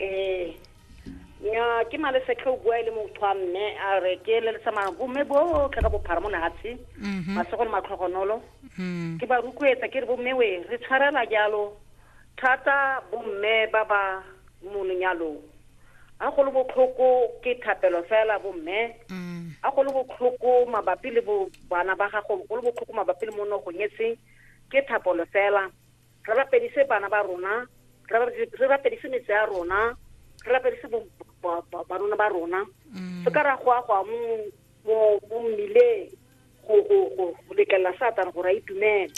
ee nya ke malesetlhe o bua e le motho wa mme a re ke le tsamaya bomme botlhe ka bophara mo lehatshe mhm. masego le matlhogonolo mhm. ke ba rukuetsa ke re bomme we re tshwarela jalo thata bomme ba ba mo lenyalong a go le botlhoko ke thapelo fela bomme mhm. a go le botlhoko mabapi le bana ba gago go le botlhoko mabapi le mo nogong e seng ke thapolo fela re rapedise bana ba rona re rapedise metse ya rona re rapedise barona ba rona mm. se ka ra go agwa mo mmileng go letlelela satane gore a itumele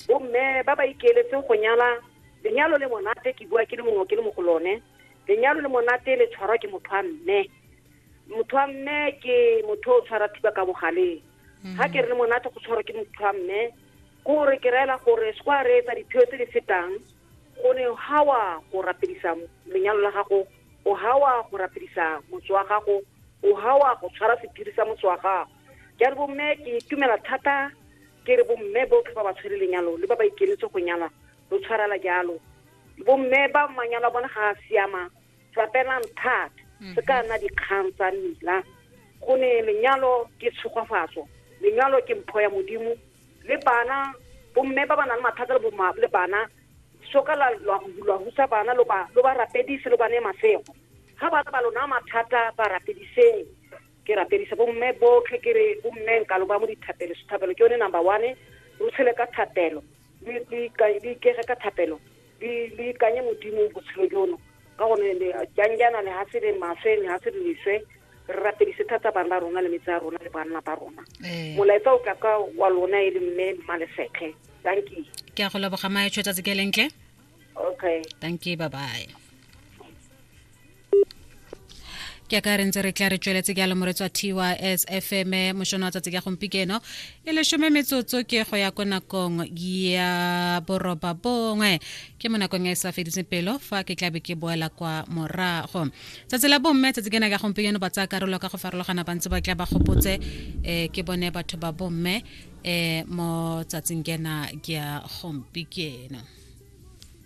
bomme ba ba ikeeletseng go nyala lenyalo le monate ke bua ke le mongwe ke le mo go lone lenyalo le monate le tshwarwa ke motho wa mme motho wa mme ke motho o tshwara thiba ka bogaleng ga ke re le monate go tshwarwa ke motho wa mme ke gore ke reela gore se kwa reetsa diphio tse di fetang go ne ga wa go rapedisa lenyalo la gago o ga wa go rapedisa motse wa gago o ga wa go tshwara sephiri sa motse wa gago ke a re bomme ke itumela thata ke re bomme botlhe ba ba tshwere lenyalo le ba ba ikenetse go nyala lo tshwarela jalo bomme ba manyalo a bone ga a siama tsapelang thata se ka nna dikgang tsa mmila go ne lenyalo ke tshogwafatso lenyalo ke mpho ya modimo le bana bomme ba ba nang le mathata le bana soka la husa bana lo ba rapedise lo ba ne masego ga bana ba lona mathata ba rapediseng ke rapedisa bomme botlhe ke re bomme nka lo ba mo dithapelo sethapelo ke yone number one re tshele ka thapelo le ikege ka thapelo le le ikanye modimo botshelo jono ka gone jang jaana le ga se le maswe le ga se le leswe re rapedise thata bana ba rona le metse a rona le banna ba rona eh. molaetsa o tla ka wa lona e le mme mmalefetlhe thank you ke a go leboga maetsho tsatsi ke lentle okay thank you bye bye ke a ka re ntse re tla re tsweletse ke a lemoretso a tys fm mošono wa tsatsi ka gompieno e lesome metsotso ke go ya ko nakong ya boroba bongwe ke mo nakong e sa fediseng pelo fa ke tlabe ke boela kwa morago tsatsi la bomme tsatsi kena ka gompieno ba tsaya karolo ka go farologana ba ntse ba tla ba gopotse um ke bone batho ba bomme um mo tsatsing kena ke ya gompieno